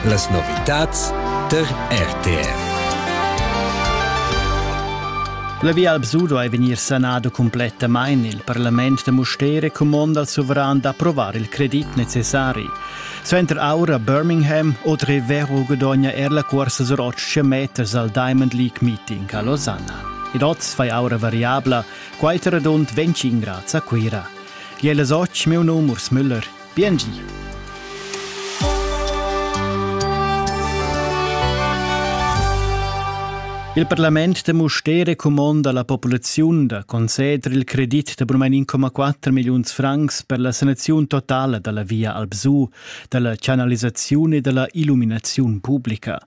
Las novitads der RTR. La Via Alpsudo è vegnir sanada complettamain. Il parlament da Mustere comanda al suveran d'approvar il credit necessari. Suenter aura Birmingham oltre vero guadogna er la corsa sur 800 meters al Diamond League meeting a Losanna. Il oz fai aura variabla, quai radund 25 grads a Cuira. Jelle Soc, meu num Urs Müller. Biengi! Il parlament da Mustér cumonda la populaziun da conceder il credit da brumain 1,4 milliuns francs per la sanaziun totala da la via Albsù, da la chanalisaziun e da la illuminaziun publica.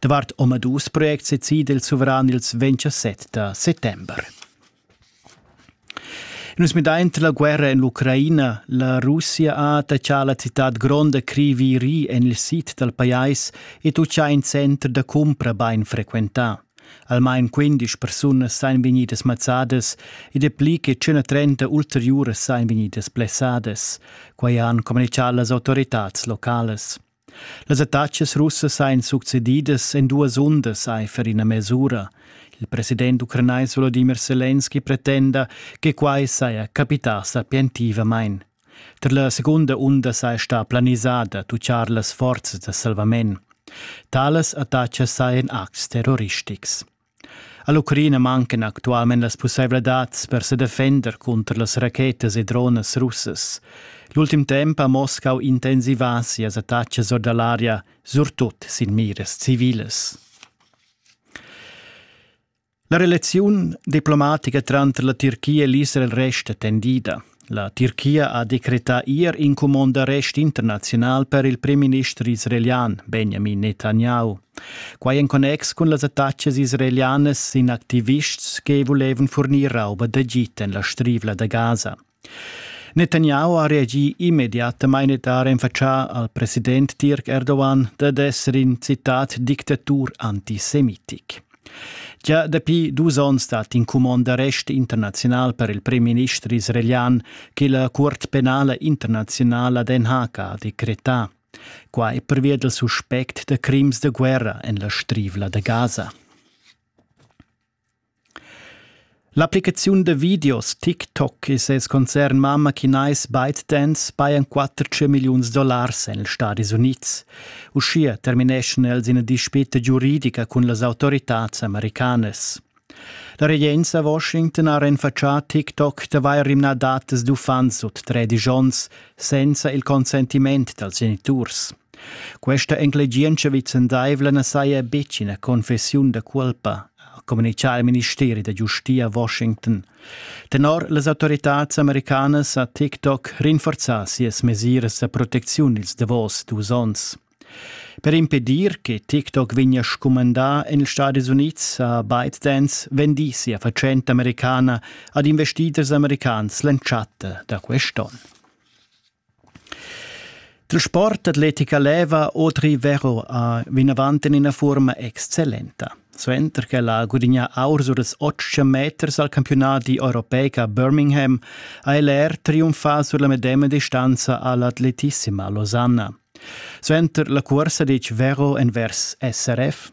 Davart omadus projects decida il suveran ils 27 da settember. Nus midai entre la guerra en l'Ucraina, la Russia ha attachà la citad gronda Kriviri en il sid dal pajais ed utscha in center da cumpra bain frequentà. Almain 15 persunas sain vegnidas mazzadas e dapli che 130 ulteriuras sain vegnidas blessadas. Quai han communichà las autoritads locales. Las attacas russas ein succedidas en duas undas aifer ina mes'ura. Il president ucranais Volodimir Selenski pretenda che quai saja capità sapientivamain. Tar la segunda unda saja stà planisada tutgar las forzas da salvament. Talas attacas sajan acts terroristics. All'Ucraina mancan actualmein las pusseivladads per sedefender cunter las rachetas e dronas russas. L'ultim temps ha Moscau intensivà sias attacas or da l'aria, surtut sin miras civilas. La relaziun diplomatica tranter la Tirchia e l'Israel resta tendida. La Tirchia ha decretà ier in cumond d'arrest internaziunal per il primminister israelian Benjamin Netanyahu. Quai en connex cun las attacas israelianas sin activists che vulevan furnir rauba d'Egit en la strivla da Gaza. Netanyahu ha reagì immediatamain ed ha renfatschà al president Tirk Erdogan dad esser in citat dictatur antisemitic. Gia dapi dus onns stat in cumond d'arrest internaziunal per il premierminister israelian che la Cuort penala internaziunala Den Haag ha decretà. Qua è pervia dal suspect da crims da guerra en la Strivla da Gaza. L'applicaziun da videos TikTok e ses concern mamma chinais ByteDance pajan 400 milliuns dollars en ils Stadis Unids. Uschia termineschan els ina dispita giuridica cun las autoritads americanas. La regenza a Washington ha renfatschà TikTok d'avair rimnà datas d'uffants sut tredici onns senza il consentiment dals geniturs. Questa enclegientscha vicendaivla na saja betg ina confessiun da culpa, communicà il ministeri da giustia Washington. Tenor las autoritads americanas ha TikTok rinforzà sias mesiras da protecziun ils davos dus onns. Per impedir che TikTok vegnia scumandà en ils Stati Unids ha ByteDance vendì sia fatschenta americana ad investiturs americans l'entschatta da quest'onn. Il sport atletica leva Audrey Vero a vinavant en ina fuorma excellenta. Suenter ch'ella ha gudignà aur sur ils otg meters al campiunadi europeic a Birmingham ha el er triumfà sur la medema distanza all'atletissima Losanna. Suenter la cursa ditg Vero envers SRF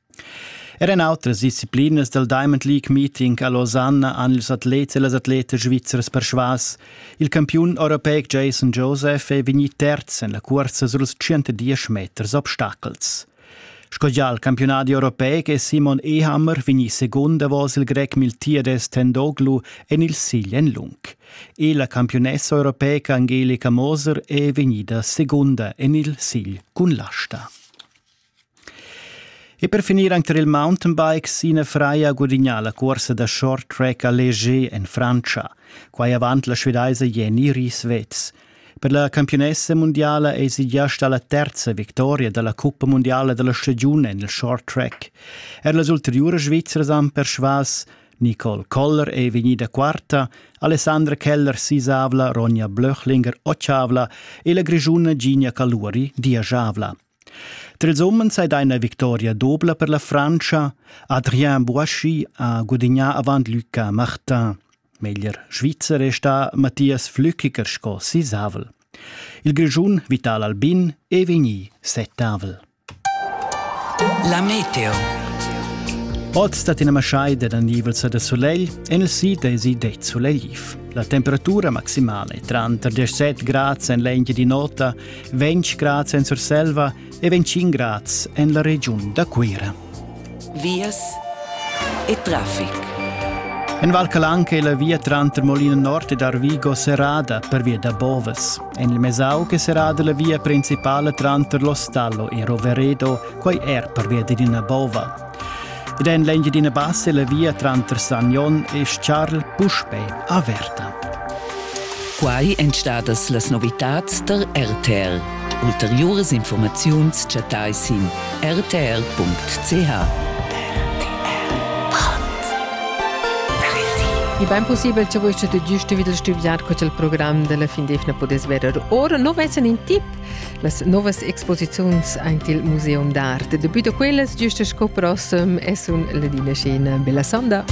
Er en outras disciplinas dal Diamond League Meeting a Lausanne han ils atlets e las atletas svizzers persvas. Il campiun europeic Jason Joseph è vegnì terz en la cursa suls 110 meters obstacels. Sco già il campionadi europeic è Simon Ehammer vegnì secund davos il grec Miltiades Tendoglu en il sigl en lung. E la campiunessa europeica Angelica Moser è vegnida secunda en il sigl cun l'asta. E per finir anc tar il mountainbikes ina fraia ha gudignà la cursa da short track a Leger en Frantscha. Quai avant la svedaisa Jenny Rieswetz. Per la campiunessa mundiala èsi gia stà la terza victoria da la cuppa mundiala da la stagiun en il short track. Er las ulteriuras Svizras han persvas. Nicole Koller è vegnida quarta, Alessandra Keller sisavla, Ronja Blöchlinger otschavla e la Grischuna Gigna Caluri diajavla. Trils umens ei dai ina victoria dobla per la Frantscha. Adrien Boischi ha gudignà avant Luca Martin. Meglier Svizzer è sta Matthias Flückiger sco sisavel. Il Grischun Vital Albin è vegni settavel. La meteo. Oz dat ina masciai da nivels da solegl en il sid è si det solegliv. La temperatura maximale è tranter 17 grads en l'engia di nota 20 grads en Surselva e 25 grads en la regiun da Cuira. Vias e traffic. En Val Calanca è la via tranter Molino Nord ed Arvigo serrada per via da Boves. En il Mesauc è serrada la via principale tranter Lo Stallo e Roveredo, quai er per via d'Edina Bova. Ed en l'engia d'ina bassa la via tranter Sagnon e Charles puspè averta. Quai èn stadas las novitads tar RTL. Ulteriuras informaziuns chattai sin rtl.ch. E ben possibel che voi te giusto vid il stuviar co il program della fin defna podes verer. Ora no vessen in tip las novas exposiziuns aint il Museum d'Art. Depui da quellas, giusta sco prossem, es un Ladina Scena. Bella sonda!